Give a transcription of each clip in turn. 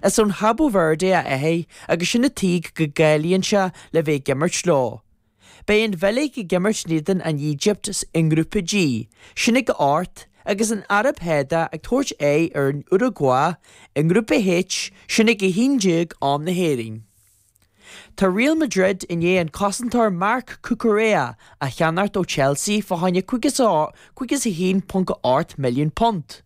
Is ón Chabo Verde a dheaidí agus sin an tuige go gcáilíonn sé le bheith ag imirt leo. Beidh an Bheilg ag imirt in éadan an Éigipt i nGrúpa G, sin ag a hocht, agus an Araib Shádach ag tabhairt aghaidh ar an Uragua i nGrúpa H, sin ag 11:00 am na hÉireann. Tá Real Madrid i ndiaidh an cosantóir Marc Cucurella a cheannacht ó Chelsea fá choinne £51.8 milliún.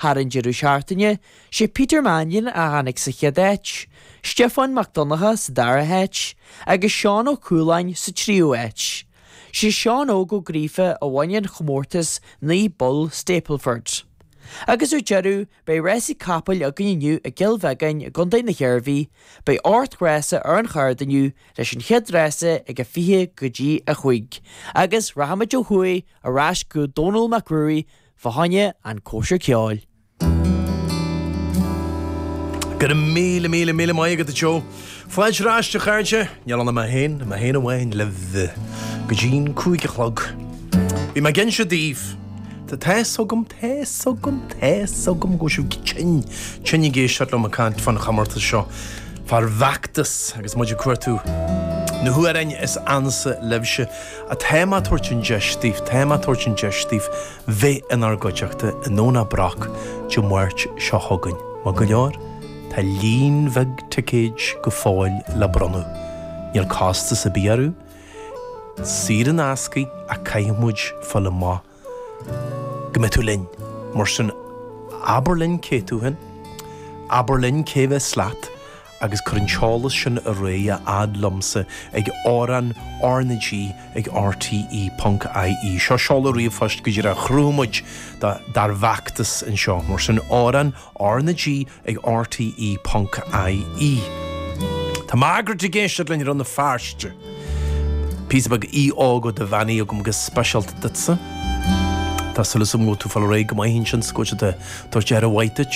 Thar an deireadh seachtaine, 'sé Peter Mannion a tháinig sa chéad áit, Stiofán Mac Donnacha sa dara háit agus Seán Ó Cualáin sa tríú áit. 'Sé Seán Óg Ó Gríofa a bhain an comórtas naoi bpoll Stableford. Agus ar deireadh, beidh Rásaí Capaill againn inniu i gCill Bheagáin i gContae na hIarmhí, beidh ocht rása ar an chárta inniu leis an chéad rása ag a fiche go dtí a cúig agus rachaimid ó thuaidh ar ais go Dónall Mac Ruairí Fá choinne an cóisir ceoil. Go raibh míle míle míle maith agat a Joe. Fáilte ar ais a chairde, níl ann ach mé féin, mé féin amháin libh go dtí an cúig a chlog. Bhí mé ag inse daoibh, tá, tá a fhios agam, tá a fhios agam, tá a fhios agam go bhfuil sibh tinn, tinn ag éisteacht liom ag caint fán chomórtas seo, fár bhfeachtas agus muid ag cuartú na hamhráin is ansa libhse. Ach tá mé ag tabhairt an deis daoibh, tá mé ag tabhairt an deis daoibh bheith inár gcuideachta i nDomhnach Broc Dé Máirt seo chugainn. Maith go leor, tá líon bheag ticéid go fóill le bronnadh. Níl costas ar bith orthu. Saor in aisce ach caithfidh muid fáil amach go mbeidh tú linn. Mar sin, abair linn cé tú féin, abair linn cé a bheas leat agus cuir an t-eolas sin ar aghaidh a fhad liomsa ag amhrán RnaG ag RTÉ.ie. Seo seoladh ríomhphoist go díreach a chruthaigh muid dár bhfeachtas anseo. Mar sin, amhrán RnaG ag rte ponc ie Tá Margaret ag éisteacht linn i Rann na Feirste. Píosa beag Aodh Óg Ó Duibheannaigh agam go speisialta duitsa. Tá súil agam go bhfuil tú ag fáil ar aghaidh go maith ansin is go bhfuil siad ag tabhairt aire mhaith duit.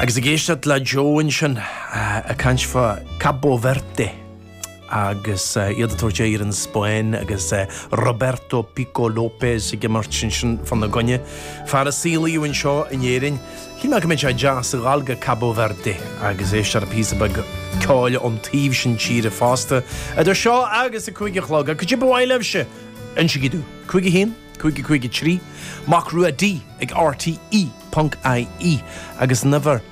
Agus ag éisteacht le Joe ansin ag caint fá Cabo Verde. agus iad ag tabhairt aghaidh ar an Spáinn agus Roberto Pico Lopes ag imirt ansin fána gcoinne, fear a saolaíodh anseo in Éirinn. Shíl mé go mbeadh sé deas a ghabháil go Cabo Verde agus éisteacht le píosa beag ceoil ón taobh sin tíre fosta. Idir seo agus a cúig a chlog, cad é ba mhaith libhse? Insígí dúinn. 51 55 3, Mac Rua D ag RTE, ponc, IE, agus an uimhir.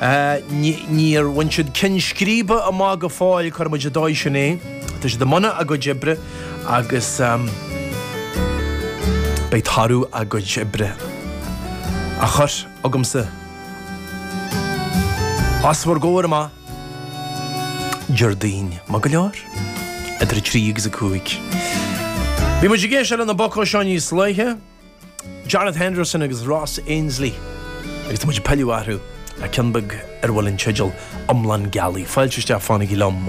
Níor bhain siad ceann scríbe amach go fóill, cuirfidh muid ar an dóigh sin é. Tá siad i mbun a gcuid oibre agus beidh toradh a gcuid oibre á chur agamsa os bhur gcomhair amach Déardaoin, maith go leor? idir a trí agus a cúig. Bhí muid ag éisteacht leis na bocanna seo níos luaithe. Jarlath Henderson agus Ross Ainslie agus tá muid ag pilleadh orthu le ceann beag ar a bhfuil an teideal iomlán gealaí. Fáilte isteach, fanaigí liom!